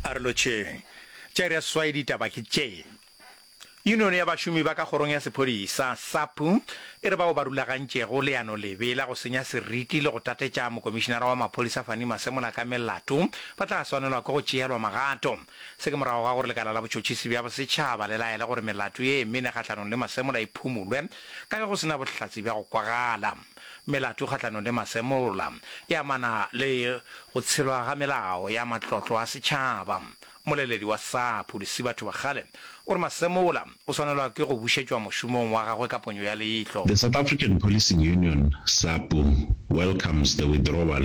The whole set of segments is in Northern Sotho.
A re lotšheng. Tša iri ya seswai ditaba ke tše. Yunione ya bašomi ba ka kgorong ya sephodisa, SAPU, e re bao ba rulagantšego leano lebe la go senya seriti le go tatetša mokomišinara wa maphodisa Fannie Masemola ka melato ba tla swanelwa ke go tšeelwa magato. Se ke morago ga gore lekala la botšhotšhisi bja bosetšhaba le laele gore melato ye mene kgahlanong le Masemola e phumulwe ka ge go se na bohlatse bja go kwagala. Melato kgahlanong le masemola e amana le go tshelwa ga melao ya matlotlo a setšhaba. Moleledi wa SAPHU, Lesibatho Bagale, o re masemola o swanelwa ke go bušetšwa mošomong wa gagwe ka ponyo ya leihlo. The South African Policing Union, SAPU, welcomes the withdrawal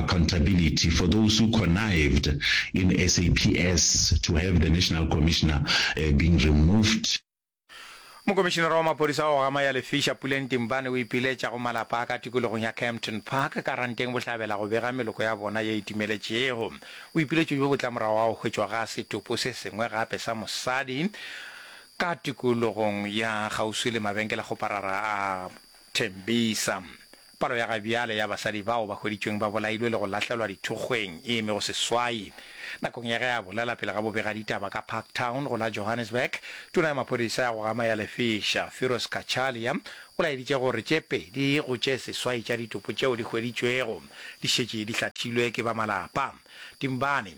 Accountability for those who connived in SAPS to have the National Commissioner being removed. Mokomišinara wa maphodisa wa go gama ya Lefiša, Puleng Timbane o ipiletša go malapa a ka tikologong ya Kempton Park, Karanteng Bohlabela go bega meloko ya bona ye e timeletšego. Boipiletšo bjo bo tla morago ga go hwetšwa ga setopo se sengwe gape sa mosadi ka tikologong ya kgauswi le mabenkele a kgoparara a Tembisa. Palo ya ga bjale ya basadi bao ba hweditšweng ba bolailwe le go lahlelwa dithokgweng e eme go seswai. Nakong ya ge a bolela pele ga bobegaditaba ka Parktown go la Johannesburg, tona ya maphodisa ya go gama ya lefiša, Firoz Cachalia, o laeditše gore tše pedi go tše seswai tša ditopo tšeo di hweditšwego di šetše di hlathilwe ke ba malapa. Timbani,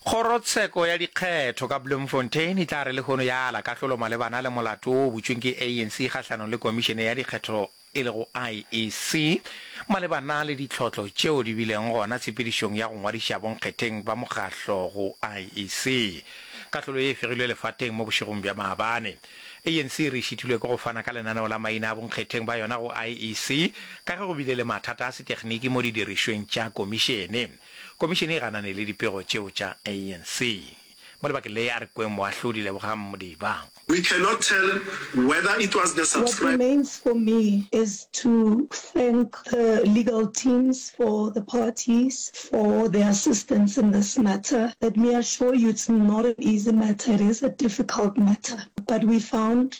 Kgorotsheko ya dikgetho ka Bloemfontein e tla re lehono ya ala kahlolo malebana le molato wo o butšweng ke ANC kgahlanong le Komišene ya Dikgetho e lego IEC malebana le ditlhotlo tšeo di bileng gona tshepedišong ya go ngwadiša bonkgetheng ba mokgahlo go IEC. Kahlolo ye e fegilwe lefateng mo bošegong bja maabane. ANC e re e šitilwe ke go fana ka lenaneo la maina a bonkgetheng ba yona go IEC ka ge go bile le mathata a setekniki mo didirišweng tša Komišene. Komišene e ganane le dipego tšeo tša ANC. Mo lebakeng le a re kweng Moahlodi Lebogang Modiba. We cannot tell whether it was the What subscriber. remains for me is to thank the legal teams for the parties for their assistance in this matter. Let me assure you it's not an easy matter, it is a difficult matter but we found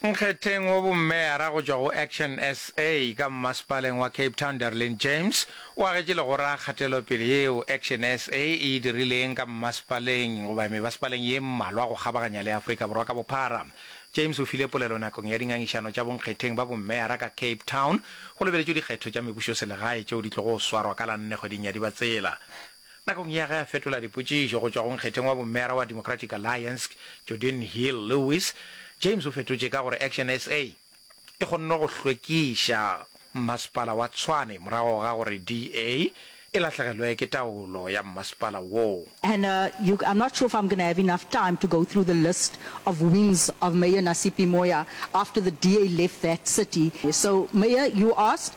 Nkgetheng wo bommeyara go tšwa go Action sa ka mmasepaleng wa Cape Town Darlene James o agetše legora kgatelopele yeo Action sa e e dirileng ka mmasepaleng goba mebasepaleng ye mmalwa go kgabaganya le Afrika Borwa ka bophara. James o file polelo nakong ya dingangišano tša bonkgetheng ba bommeyara ka Cape Town go lebeletšwe dikgetho tša mebušoselegae tšeo di tlogo swarwa ka la nne kgweding ya Dibatsela. Nakong ya ge a fetola dipotšišo go tšwa go nkgetheng wa bommeara wa Democratic Alliance, Jordin Hill-Lewis, James o fetotše ka gore Action sa e kgonne go hlwekiša mmasepala wa Tshwane morago ga gore DA e lahlegelwe ke taolo ya mmasepala woo. And uh, you, I'm not sure if I'm gonna have enough time to go through the list of wings of Mayor Nasipi Moya after the DA left that city. So, Mayor, you asked,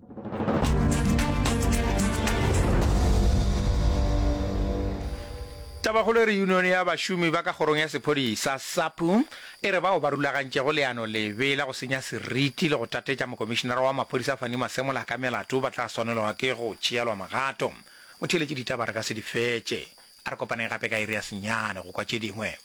Tabakgolo e re Yunione ya Bašomi ba ka Kgorong ya Sephodisa, SAPU, e re bao ba rulagantšego leano lebe la go senya seriti le go tatetša mokomišinara wa maphodisa Fannie Masemola ka melato ba tla swanelwa ke go tšeelwa magato. Motheeletši ditaba re ka se di fetše. A re kopaneng gape ka iri ya senyane go kwa tše dingwe.